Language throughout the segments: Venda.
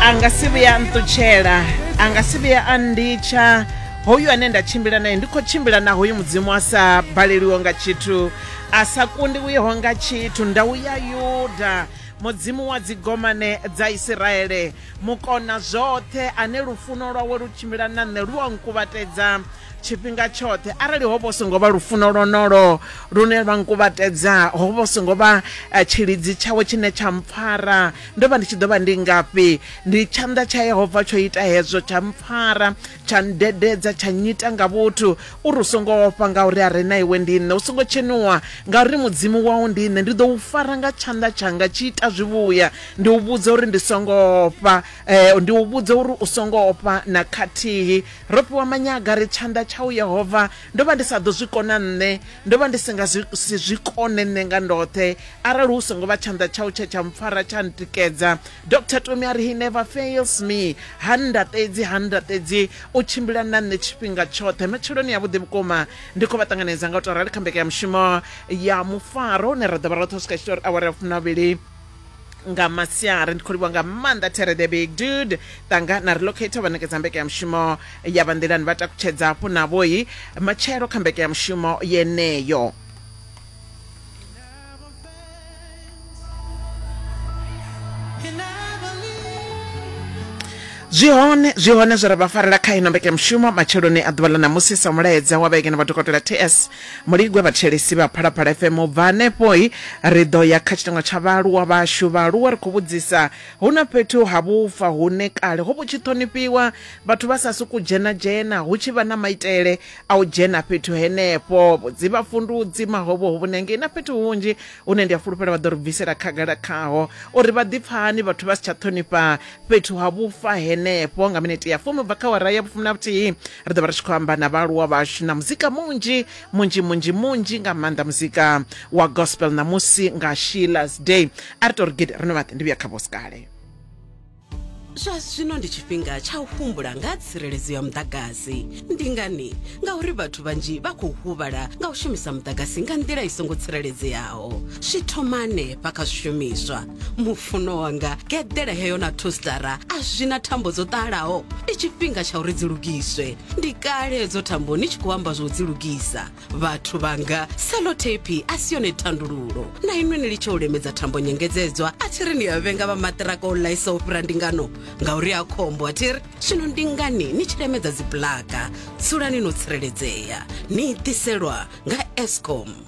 a nga si vhuya a nṱutshela a nga si vhuya a nditsha hoyu ane nda tshimbila naye ndi khou tshimbila na hoyu mudzimu a sa baleliho nga tshithu a sa kundiwiho nga tshithu ndau ya yuda mudzimu wa dzigomane dza isiraele mukona zwoṱhe ane lufuno lwawe lu tshimbila na nṋe lu a nkuvhatedza tshifhinga tshoṱhe arali ho vho songo vha lufuno lwonolo lune lwa nkuvhatedza ho vho songo vha eh, tshilidzi tshawe tshine tsha mpfara ndo vha ndi tshi ḓo vha ndi ngafhi ndi tshanḓa tsha yehova tsho ita hezwo tsha mpfara tsha ndededza tsha nyita nga vhuthu uri u songo ofha ngauri a re na iwe ndi nṋe u songo tshenuwa ngauri mudzimu wau ndi nṋe ndi ḓo u fara nga tshanḓa tshanga tshi ita zwivhuya ndi u vhudza uri ndi songo ofha eh, ndi u vhudza uri u songo ofha na khathihi Ro fhiwa manyaga ri tshanḓa tsha u Yehova. Ndo vha ndi sa ḓo zwi kona nṋe. Ndo vha ndi si nga zwi, si zwi kone nṋe nga ndoṱhe arali hu songo vha tshanḓa tshau tshe tsha mpfara tsha ntikedza. Doctor Tumi a ri, He never fails me. Ha nndaṱedzi, ha nndaṱedzi. U tshimbila na nṋe tshifhinga tshoṱhe. Matsheloni avhuḓi vhukuma ndi khou vha ṱanganedza nga u tou rali kha mbekanyamushumo ya Mufaro hune ra ḓo vha roṱhe u swika tshi tou ri awara ya fumi na vhuvhili. nga masiari ndi khou livhuwa nga maanḓa tere the big dude tanga na relocator vha ṋekedza mbeke ya mushumo ya vha nḓilani vha takutshedza hafhu navhoyi matshelo kha mbeke ya mushumo yeneyo zwi hone zwi hone zwi re vha farela kha ino mbeke mushumo matsheloni a ḓuvha ḽa ṋamusi sa mulaedza wa vhege na vhadokotela ts Muligwe vhathetshelesi vha Phalaphala FM u bva hanefho ri ḓo ya kha tshiteṅwa tsha vhaaluwa vhashu. Vhaaluwa ri khou vhudzisa hu na fhethu ha vhufa hune kale ho vhu tshi ṱhonifhiwa vhathu vha sa sokou dzhena dzhena hu tshi vha na maitele a u dzhena fhethu henefho vhudzi vhafundudzi mahovho hovhune hangei na fhethu hunzhi hune ndi a fhulufhela vha ḓo ri bvisela khagala khaho uri vha ḓi pfa hani vhathu vha si tsha ṱhonifha fhethu ha vhufa henefho nga minete ya fumi bva kha wara ya vhufumi na vhuthihi ri ḓo vha ri tshi khou amba na vhaaluwa vhashu na muzika munzhi munzhi munzhi munzhi nga maanḓa muzika wa gospel ṋamusi nga sheilas day a ri to ri gidi ri no vhaḓe ndi vhuya kha vhosikale zwa zwino ndi tshifhinga tsha u humbula nga ha tsireledzo ya muḓagasi ndi ngani ngauri vhathu vhanzhi vha khou huvhala nga u shumisa muḓagasi nga nḓila i songo tsireledzeaho zwi thoma hanefha kha zwishumiswa mufuno wanga geḓele heyo na thostara a zwi na thambo dzo ṱalaho ndi tshifhinga tsha uri dzi lugiswe ndi kale hedzo thambo ni tshi khou amba zwo dzi lugisa vhathu vhanga selotepi a si yone thandululo na inwe ni litshe u lemedza thambo nyengedzedzwa a thi ri ni a vhenga vha maṱiraka o ḽaisa u fhira ndingano ngauri a khombo a thi ri zwino ndi ngani ni tshi lemedza dzibulaka dzulani no tsireledzea ni ḓiselwa nga escom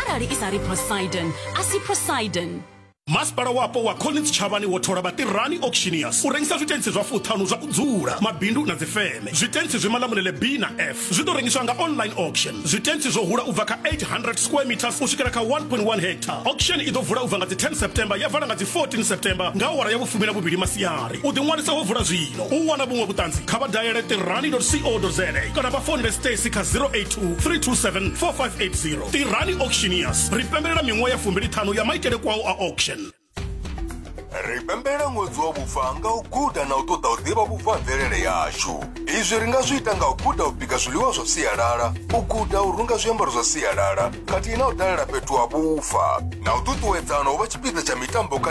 arali i sa ri prosidon a si prosidon masipala wapo wa collins tshavhani wo thola vhatirani auctioneers u rengisa zwitentsi zwa fuṱhanu zwa u dzula mabindu na dzifeme zwitentsi zwi malamulele b na f zwi ḓo rengiswa nga online auction zwitentsi zwo hula u bva kha 800 square meters u swikela kha 1.1 hectare auction i ḓo vula u bva nga dzi 10 september ya vala nga dzi 14 september nga awara ya vhufumi na vhuvhili masiari u ḓiṅwalisa ho vula zwino u wana vhuṅwe vhuṱanzi kha vha dayele tirani co za kana vha founele stacy kha 081 3274580 tirani auctioneers ri pembelela miṅwaha ya fumbiliṱhanu ya maitele kwao a auction ri pembelela ṅwedzi wa vhufa nga u guda na u ṱoḓa u ḓivha vhufa ha mvelele yashu izwi ri nga zwi ita nga u guda u bika zwiḽiwa zwa sialala u guda u runga zwiambaro zwa sialala khathihi na u dalela fhethu ha vhufa na u ṱuṱuwedzana u vha tshipiḓa tsha mitambo khathihi